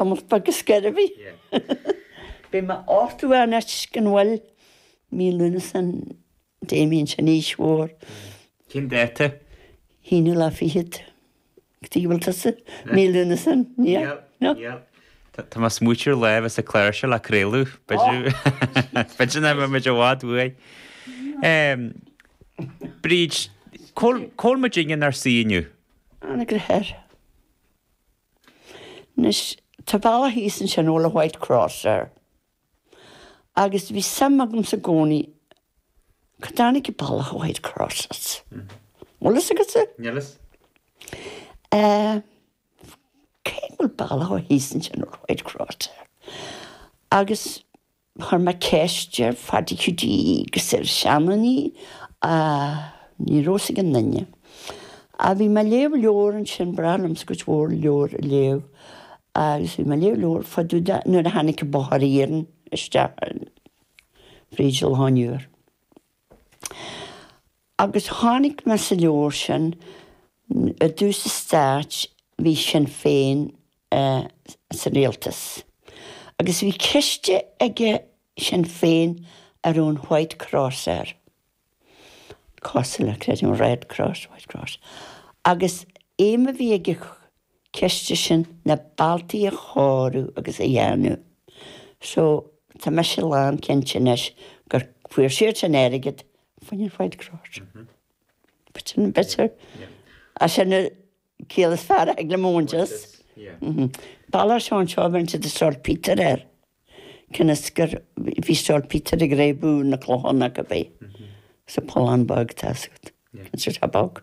Imeachta agus gairbhí. Beidh mé orthu a n-eitic an bhfuil mí Lúnasa san Damien san aois mhór. Cén dáta? Aonú lá fichead. Go dtí go bhfuil tusa mí Lúnasa san aois. Tá más muid ar lá a bheas an clár seo le craoladh. B'fhéidir nach mbeimid i bhfad uaidh. Bríd, cá bhfuil muid inár suí inniu? Anagaire Thoir. Anois, tá bealach thíos ansin a bhfuil an White Cross air. Agus bhí suim agamsa i gcónaí cá dtáinig Bealach an White Cross as. Bhfuil fhios agatsa? Níl fhios. Eh, cé go bhfuil bealach thíos ansin a bhfuil an White Cross air. Agus Chuir mé ceist ar Phaddy Hiúdaí agus ar sheandaoine ach ní raibh fhios ag aon duine. Ach bhí mé ag léamh leabhar ansin, is breá liom cuid mhór leabhar a léamh agus bhí mé ag léamh leabhar fá dtaobh de nuair a tháinig an bóthar iarainn isteach fríd Loch an Iúir. Agus tháinig mé sa leabhar sin, i dtús an stáit bhí Sinn Féin sa rialtas. Agus bhí ciste aige Sinn Féin a raibh an White Cross air. Cosúil le creidim, Red Cross, White Cross. Agus aidhm a bhí ag an chiste sin na bealtaí a chóiriú agus a dhéanamh so tá mise lán cinnte anois go bhfuair siadsan airgead faoin ainm White Cross. B'fhéidir é. B'fhéidir. Is é sin an chiall is fearr a thig liom a bhaint as. Bealach s'againne seo, bheir siad an Saltpetre air. Cionn is gur bhí saltpetre ag réabadh na clochán acu fé. Sa pollán beag atá agat. Cionn is gur, tá bog.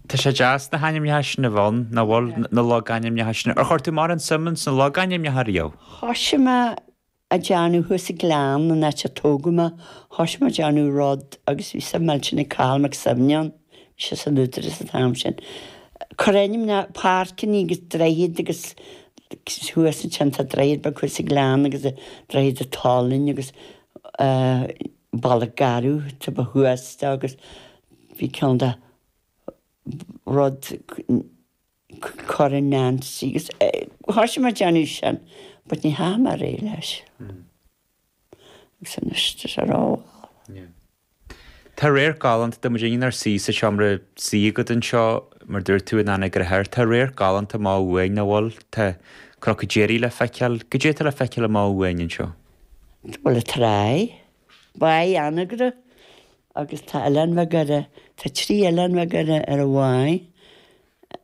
Tá sé deas na hainmneacha sin a bheith ann, nach bhfuil, na logainmneacha sin. Ar chuir tú mórán suim ins na logainmneacha riamh? Thosaigh mé a dhéanamh thuas sa Ghleann, an áit a tógadh mé, thosaigh mé a dhéanamh rud agus bhí suim millteanach ag Cathal Mac Suibhne ann. bhí sé san Údarás an t-am sin, cur ainm na páirceanna agus droichead agus thuas ansin tá droichead beag thuas sa ghleann agus Droichead an tSalainn agus Bealach Garbh atá taobh thuas de agus bhí ceann de rud cur in Nancy agus thoisigh mé a dhéanamh sin but ní dheachaidh mé ar aghaidh leis. agus an istis ar ámharaí. Tá radharc galánta tá muid inár suí sa tseomra suí agat anseo, mar dúirt tú in Anagaire Thoir. Tá radharc galánta amá uainn, nach bhfuil? Tá Cnoc Déirí le feiceáil. Goidé atá le feiceáil amach uainn anseo? Bhuel, Tráigh, Báighe Anagaire agus tá oileáin bheaga air, tá trí oileán bheaga ar an bháigh,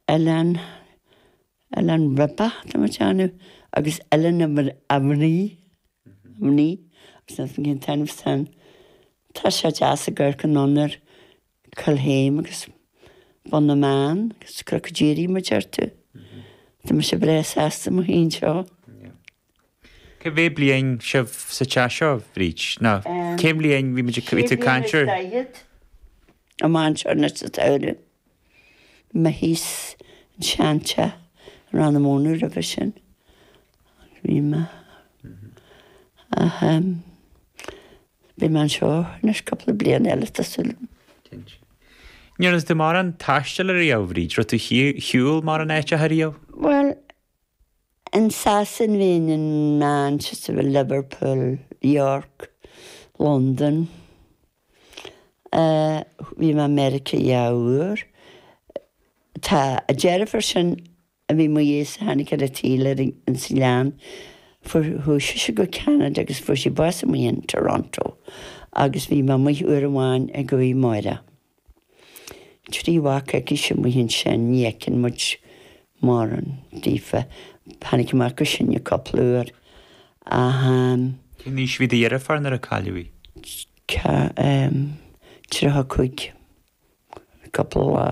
Oileán Oileán Rabbit tá mé ag déanamh agus Oileán a mhnaoi, mhnaoi agus nach cén t-ainm san, tá sé deas ag amharc anonn ar Collchéim agus Bun na mBan agus Crocaigh Dírí mar a deir tú, tá mise breá sásta mo shuí anseo. Cá mhéad bliain sibh sa teach seo, Bhríd? Nó cén bhliain bhí muid, bhí tú ag caint ar? Sé bliana is daichead. An mhainséar nó sa tsamhradh. Mé thíos an sean teach i Rann na Mónadh roimhe sin. Bhí mé. Ach beidh mé anseo anois cúpla bliain eile tá súil agam. Cinnte. An ndearn tú mórán taistil ariamh, Bhríd, raibh tú ar shiúl mórán áiteacha ariamh? Bhuel, In Sasain bhí mé in Manchester, Liverpool, York, Londain. Bhí mé i Meiriceá dhá uair. Tá an deirfiúr sin a bhí i mo dhiaidhse a tháinig ar an tsaol ins an oileán, fuair, chuaigh sise go Ceanada agus fuair sí bás amuigh in Toronto agus bhí mé amuigh uair amháin ag Máire. Trí mhac aicise amuigh ansin, ní fheiceann muid mórán daofa. Tháinig an mac is sine cúpla uair ach. Cén aois a bhí do dheirfiúr nuair a cailleadh í? Cha, em, tríocha cúig. Cúpla lá.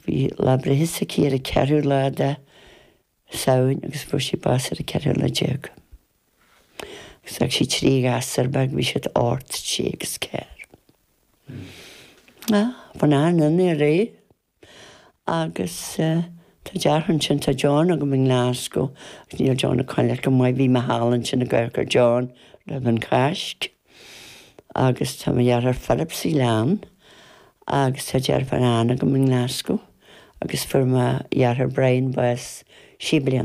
Bhí lá breithe s'aici ar an ceathrú lá de. Samhain agus fuair sí bás ar an ceathrú lá déag. Agus d'fhág sí trí ghasúr beag, bhí siad ocht, sé agus ceathair. Ah, bhí an an i ré agus tá deartháir ansin, tá John agam i nGlaschú, níl John ag coinneáil go maith, bhí mé thall ansin ag amharc ar John roimh an Cháisc. Agus tá mo dheartháir Philip san oileán agus tá deirfiúr Ann agam i nGlaschú agus fuair mo dheartháir Brian bás sé bliana.